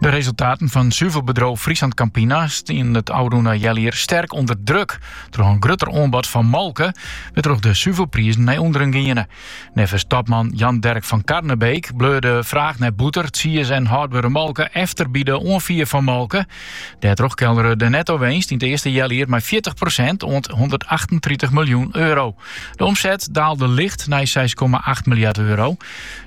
De resultaten fan suvelbedriuw FrieslandCampina stiene it ôfrûne healjier sterk ûnder druk. Troch in grutter oanbod fan molke wêrtroch de suvelprizen nei ûnderen giene. Neffens topman Jan Derck van Karnebeek bleau de fraach nei bûter, tsiis en hâldbere molke efter by de oanfier fan molke. Dêrtroch keldere de netto-winst yn it earste healjier mei fjirtich prosint oant hûndertachtentritich miljoen euro. De omset daalde licht nei seis komma acht miljard euro.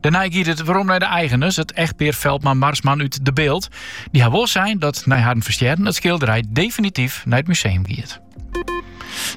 Dêrnei giet it werom nei de eigeners, it echtpear Veldman-Marsman út De Bilt. Dy ha wol sein dat nei harren ferstjerren it skilderij definityf nei it museum giet.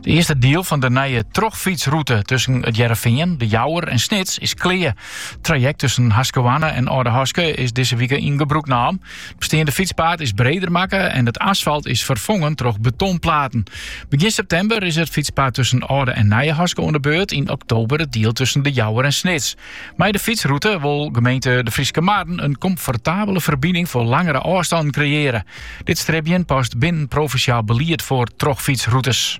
De eerste diel fan de nije trochfytsrûte tussen it Hearrenfean, de Jouwer en Snits is klear. Traject tussen Haskerhoarne en Aldehaske is dizze wike yn gebrûk naam. It besteande fytspaad is breder makke en it asfalt is ferfongen troch betonplaten. Begjin septimber is it fytspaad tusken Alde en Nijehaske oan de beurt, yn oktober it diel tusken De Jouwer en Snits. Mei de fytsrûte wol gemeente De Fryske Marren in komfortabele ferbining foar langere ôfstannen kreëarje. Dit stribjen past binnen provinsjaal belied foar trochfytsrûtes.